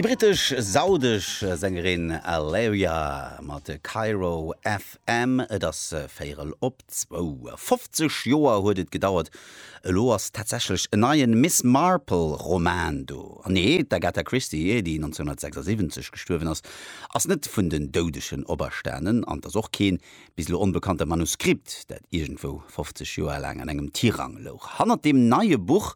Déi brittesch-saudesch Sängerin Alaïa mat Cairo FM. Et ass véierel op zwou. 50 Joer huet et gedauert, elo ass tatsächlech en neien Miss Marple-Roman do. An nee, d'Agatha Christie, déi 1976 gestuerwen ass, ass net vun den Doudegen operstanen an 't ass och keen, bis elo onbekannte Manuskript, dat iergendwou 50 Joer laang an engem Tirang louch. Hannert deem neie Buch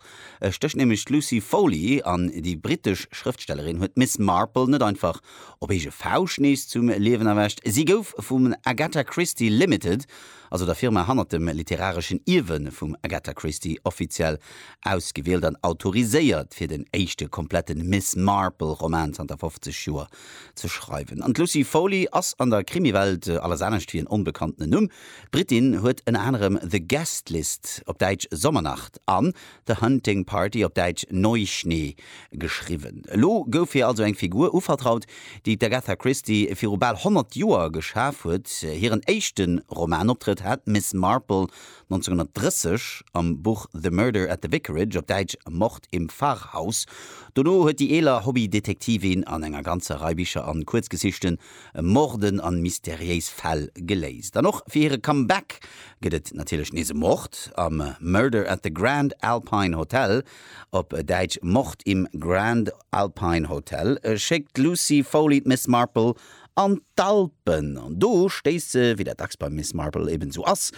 stécht nämlech d'Lucy Foley, an déi brittesch Schrëftstellerin huet d'Miss Marple net einfach op eege Fauscht nees zum Liewen erwächt. Si gouf vum Agatha Christie Limited, also der Firma hannert dem literareschen Ierwe vum Agatha Christie, offiziell ausgewielt an autoriséiert, fir den éischte kompletten Miss-Marple-Roman zanter 50 Joer ze schreiwen. An d'Lucy Foley ass an der Krimiwelt alles anescht wéi en onbekanntene Numm. D'Britin huet ënner anerem The Guest List, op Däitsch Sommernacht, an The Hunting Party, op Däitsch Neuschnee, geschriwwen. Elo gouf hir also eng Figur uvertraut, déi d'Agatha Christie viru bal 100 Joer geschaf huet. Hiren éischte Romanoptrëtt hat Miss Marple 1930 am Buch The Murder at the Vicarage, op Däitsch Mord im Pfarrhaus. Dono huet déi eeler Hobby-Detektivin an enger ganzer Rei Bicher an Kuerzgesichten Morden an mysteriéis Fäll geléist. An och fir hire Comeback gëtt et natierlech nees e Mord am Murder at the Grand Alpine Hotel, op Däitsch Mord im Grand Alpine Hotel schéckt d'Lucy Foley, d'Miss Marple, an d'Alpen. An do stéisst se, wéi dat dacks beim Miss Marple eben esou ass,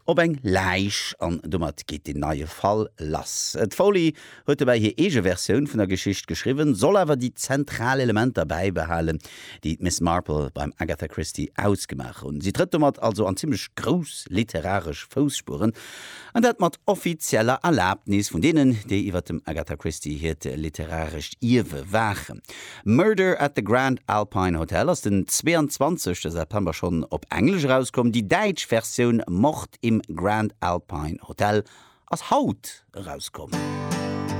op eng Läich. An domat geet deen neie Fall lass. D'Foley huet dobäi hir eege Versioun vun der Geschicht geschriwwen, soll awer déi zentral Elementer bäibehalen, déi d'Miss Marple beim Agatha Christie ausgemaach hunn. Si trëtt domat also an zimmlech grouss literaresch Fousspueren. An dat mat offizieller Erlaabnis vun deenen, déi iwwer dem Agatha Christie hiert literarescht Ierwe waachen. Murder at the Grand Alpine Hotel ass den 22. September schonn op Englesch erauskomm. Déi däitsch Versioun Mord im Grand Alpine Hotel ass haut erauskomm.